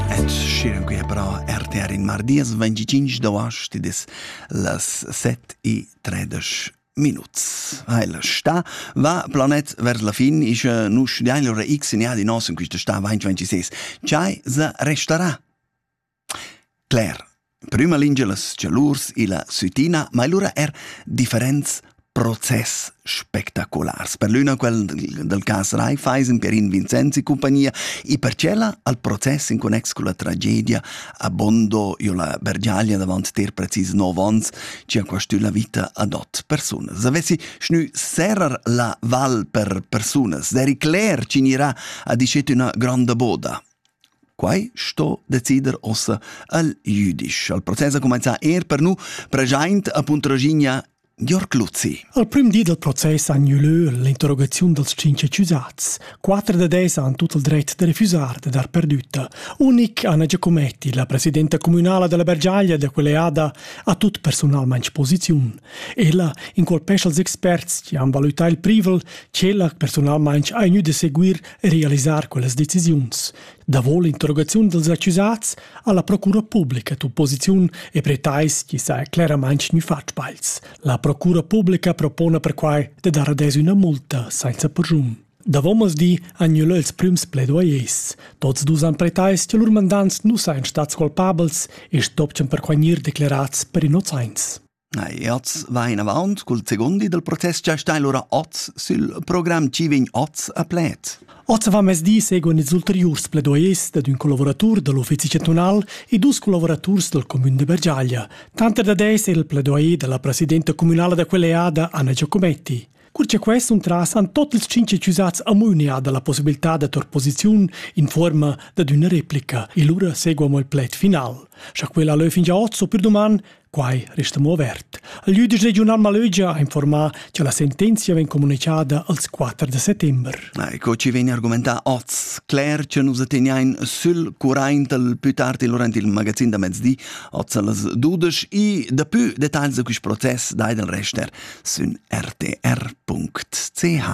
Et schieu che però RTR in mardies 25 d'auast dis las 7 e 13 minuts. Heil sta va planet vers la fin is nus diail ora x in di nos in quista sta 2026. Chai se restarà. Claire prüma lingia las chalurs illa sütina, ma lura er differents process spectaculars. Per l'üna quel dal cas Raiffeisen per in Vincenzi compagnia e per cella al process in connex con la tragedia a Bondo io la Bergiaglia davant ter precis 9 ans ci ha quastù la vita ad ot persunas. Avessi schnü serrar la val per persunas, der Cler ci gnirà a dicet üna granda boda. Quai sto decider ossa el jüdisch. Il process ha cumenzà er per nu preschaint a Puntraginia Jörg Luzzi. Al prüm di dal process han gnü lö l'interrogaziun dals tschinch accusats. Quatter da dez han tut il dret da refusar de dar perdütta. Unic Anna Giacometti, la presidenta comunala della Bergiaglia da quell'eada, ha tut personalmente posiziun. Ella incolpescha els experts che han valutà il privel, ch'ella personalmente ha gnü de seguir realisar quellas decisiuns. Davo l'interrogaziun dels accusats ha la procura publica tu posiziun e pretais chi sa claramaing gnü fat sbagls. La procura publica propona perquai de dar adez üna multa sainza purgium. Davo di han gnü lö ils prüms pledoyers. Tots dus han pretais che lur mandants nu sajan stats colpabels e stopchan perquai gnir declerats per innozaints. Oz vain avaunt cul segundi dal protest cha sta lura oz sül program chi vegn oz a pled. Oz avamezdi seguan ils ulteriurs pledoyers dad ün collavuratur da l'uffizi chantunal e dus collavuraturs dal cumün de Bergiaglia. Tanter da des è il pledoyer dalla presidenta communala da quella eada Anna Giacometti. Cur che quai s'untras han tot ils cinq accusats amunia dalla possibilità da tor posiziun in forma dad üna replica e lura seguamo il pled final. Scha quella leu fin già hoz o per doman, quai resta mo avert. Il jüdisch regiunal Malögia ha informà che la sentenzia vegn comunicada als 4 de settembre. Ecco, ci vegn argumentà oz cler che nus attegnain sül curaint del più tardi durant il magazin da mezdi Otzelas dudesch i dapü details da quist process dai dal rester sün rtr.ch.